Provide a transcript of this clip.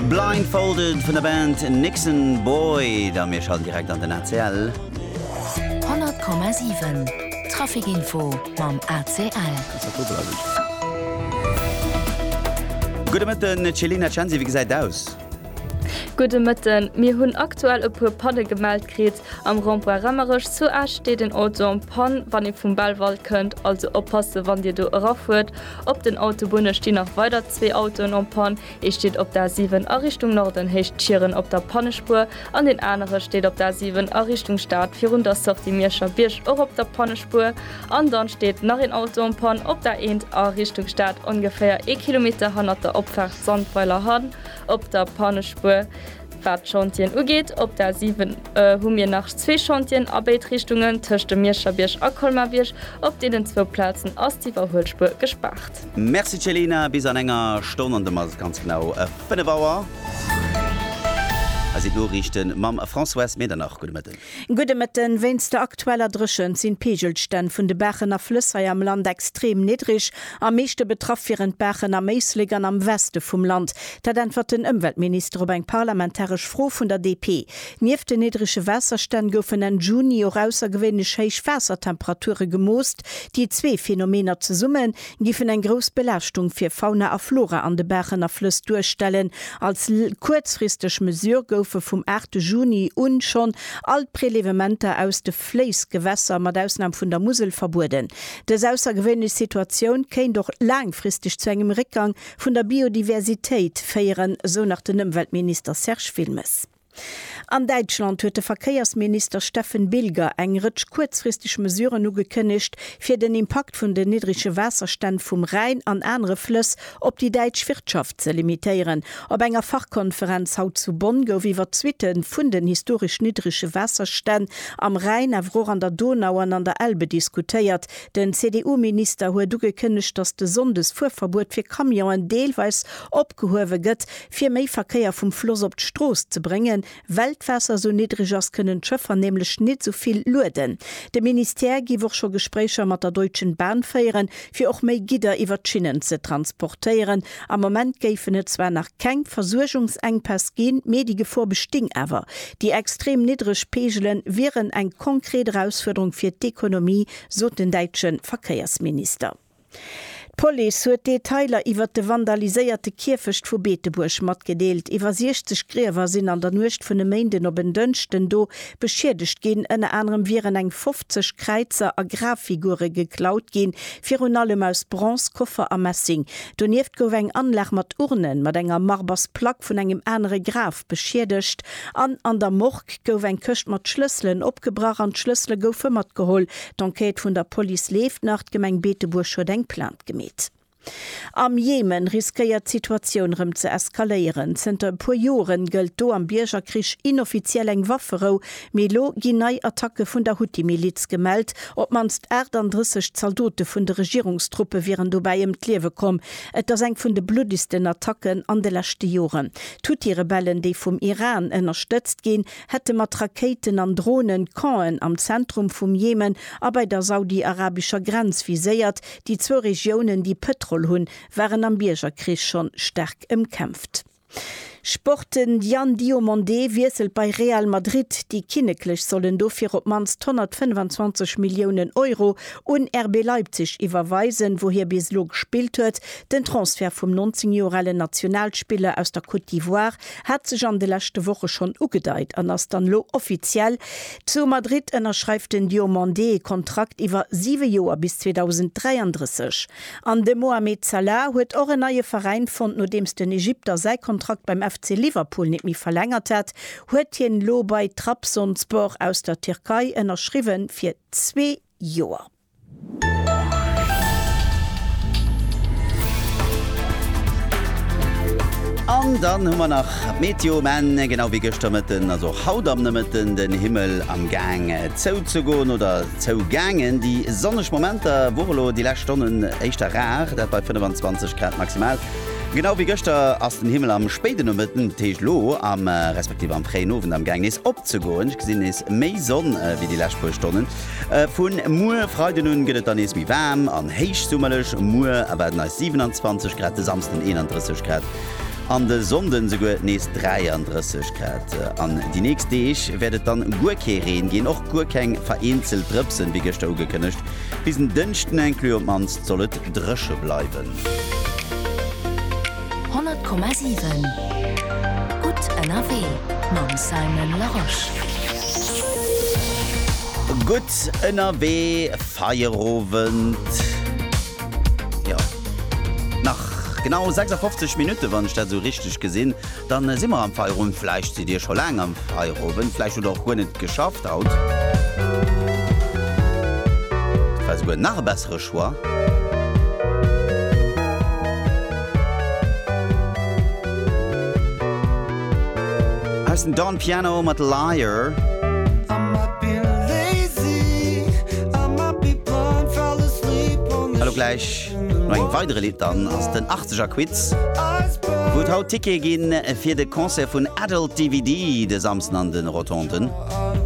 Blindfolded vun der Band Nixon Boyd a mir schalten direkt an den ACL. 100,7 Trafikinfo mam ACL. Gudde Mëtten Céline Acensi, wéi gesäit et aus? Gudde Mëtten, mir hunn aktuell e puer Panne gemellt kritt. Am Rond-point Remmerech zu Esch steet en Auto en panne wann ee vum Belval kënnt, also oppasse wann Dir do erafuert. Op den Autobunne stinn nach weider zwee Autoen en panne, Ee steet op der A7 a Richtung Norden héicht Schieren op der Pannespuer an deen anere steet op der A7 a Richtung Stad virun der Sortie Mierscher Bierg och op der Pannespuer. An dann steet nach een Auto en panne op der A1 a Richtung Stad ongeféier ee Kilometer hannert der Opfaart Sandweiler Hann op der Pannespuer. Wat d'Chantieren ugeet, op der 7 hu mir nach zwee Chantieren a béid Richtungen, tëscht dem Miescherbierg a Colmar-Bierg. Op deenen zwou Plazen ass d'Iwwerhuelspuer gespaart. Merci Celina, bis an enger Stonn an domat ass et ganz genau 5 Auer. Hei sinn d'Noriichten mam Françoise Medernach. Gudde Mëtten. Gudde Mëtten. Wéinst der aktueller Dréchent sinn d'Peegelstänn vun de Baachen a Flëss hei am Land extrem niddreg. Am meeschte betraff wieren d'Baachen am Éislek an am Weste vum Land. Dat äntwert den Ëmweltminister op eng parlamentaresch Fro vun der DP. Nieft den niddrege Waasserstänn goufen Enn Juni och aussergewéinlech héich Waassertemperature gemoost. Déi zwee Phänomener zesummen Giffen eng grouss Belaaschtung fir Fauna a Flora an de Baachen a Flëss duerstellen. Als kuerzfristeg Mesure goufe vum 8 Juni un schonn all d'Prelevementer aus de Fléissgewässer, mat Ausnam vun der Musel, verbueden. Dës aussergewéinlech Situatioun kéint och laangfristeg zu engem Réckgang vun der Biodiversitéit féieren, sou nach den Ëmweltminister Serge Wilmes. An Däitschland huet de Verkéiersminister Steffen Bilger eng Rëtsch kuerzfristeg Mesuren ugekënnegt, fir den Impakt vun den niddrege Waasserstänn vum Rhäin an anere Flëss op déi däitsch Wirtschaft ze limitéieren. Op enger Fachkonferenz haut zu Bonn gouf iwwer d'Suitte vun den historesch niddrege Waasserstänn am Rhäin, awer och an der Donau an an der Elbe diskutéiert. Den CDU-Minister huet ugekënnegt, datt de Sonndes-Fuerverbuet fir Camionen deelweis opgehuewe gëtt, Fir méi Verkéier vum Floss op d'Strooss ze bréngen, well d'Waasser sou niddreg ass, kënnen d'Schëffer nämlech nit sou vill lueden. De Ministère giff och scho Gespréicher mat der Deutschen Bahn féieren, fir och méi Gidder iwwer d'Schinnen ze transportéieren. Am Moment géifen et zwar nach keng Versuergungsenkpäss ginn, mee déi Gefor besting awer. Déi extrem niddreg Peegele wieren eng konkret Erausfuerderung fir d'Ekonomie, sot den däitsche Verkéiersminister. D'Police huet Detailer iwwert de vandaliséierte Kierfecht vu Beetebuerg matgedeelt. Iwwer 60 Griewer sinn an der Nuecht vun e Méinden op en Dënschden do beschiedegt ginn. Ënner anerem wieren eng 50 Kräizer a Graffigure geklaut ginn, virun allem aus Bronze, Koffer a Messing. Donieft gouf eng Anlag mat Urnen mat enger Marbers Plack vun engem anere Graf beschiedegt an an der Morgue gouf eng Këscht mat Schlësselen opgebrach an d'Schlëssele goufe matgeholl. D'Enquête vun der Police leeft nach, d'Gemeng Beetebuerg huet eng Plainte gemeet. Am Jemen riskéiert d'Situatioun rëm ze eskaléieren. Zënter e puer Joren gëllt do am Biergerkrich inoffiziell eng Wafferou, mee elo ginn nei Attacke vun der Huthi-Miliz gemellt. Op d'mannst 38 Zaldote vun de Regierungstruppe wieren dobäi ëm d'Liewe komm. Et ass eng vun de bluddegsten Attacken an de leschte Joren. D'Huthi-Rebellen, déi vum Iran ënnerstëtzt ginn, hätte mat Rakéiten an Dronen d'Campen am Zentrum vum Jemen a bei der saudi-arabescher Grenz viséiert. Déi zwou Regiounen, déi Pëtrol hunn, waren am Biergerkrich schonn staark ëmkämpft. Sport, De Diane Diomandé wiesselt bei Real Madrid, déi Kinneklech sollen dofir op d'mannst 125 Milliounen Euro un RB Leipzig iwwerweisen, wou hie bis elo gespillt huet. Den Transfert vum 19 Joer ale Nationalspiller aus der Côte d'Ivoire Hat sech an de leschte Woche schonn ugedeit an ass dann elo offiziell, Zu Madrid ënnerschreift den Diomandé ee Kontrakt iwwer siwe Joer bis 2033. An de Mohamed Salah huet och en neie Veräin fonnt. Nodeems den Egypter säi Kontrakt beim FC Liverpool net méi verlängert hat, huet hien elo bei Trabzonspor aus der Tierkei ënnerschriwwen fir zwee Joer. An dann hu mer nach d'Meteo um Enn. Genau wéi gëschter Mëtten ass och haut am Nomëtten den Himmel am Gaang zouzegoen oder zougaangen. Déi sonneg Momenter wore elo déi lescht Stonnen éischter rar, dat bei 25 Grad maximal. Genau wéi gëschter ass den Himmel am spéiden Nomëtten, dat heescht elo am respektiv am fréien Owend, am Gaang nees opzegoen. Ech gesinn nees méi Sonn wéi déi lescht puer Stonnen. Vu muer Freiden un gëtt et dann nees méi waarm an héichsummerlech. Muer erwaarden eis 27 Grad, de Samsden 31 Grad an de Sonnde souguer nees 33 Grad. An déi nächst Deeg wäert et dann guer kee Reen ginn, och guer keng vereenzelt Drëpsen, wéi gëschter ugekënnegt. Bis en Dënschden inclus op d'mannst soll et dréche bleiwen. 100,7 Gutt ënnerwee mam Simon Larosche. Gutt ënnerwee, Feierowend. Jo, nach genau 56 Minutten, wann ech dat esou richteg gesinn, dann si mer am Feierowend. Vläicht sidd dir scho laang am Feierowend, vläicht hutt der och guer net geschafft haut. Dat war esouguer nach e. Votre choix. heißen Don Piano mit Liar. Hallo gleich noch eng weitere Lied dann aus den 80er Quiz. Gut haut Ticket gin fir de Konzer vun Adult DVD de Samsen an den Rotonden.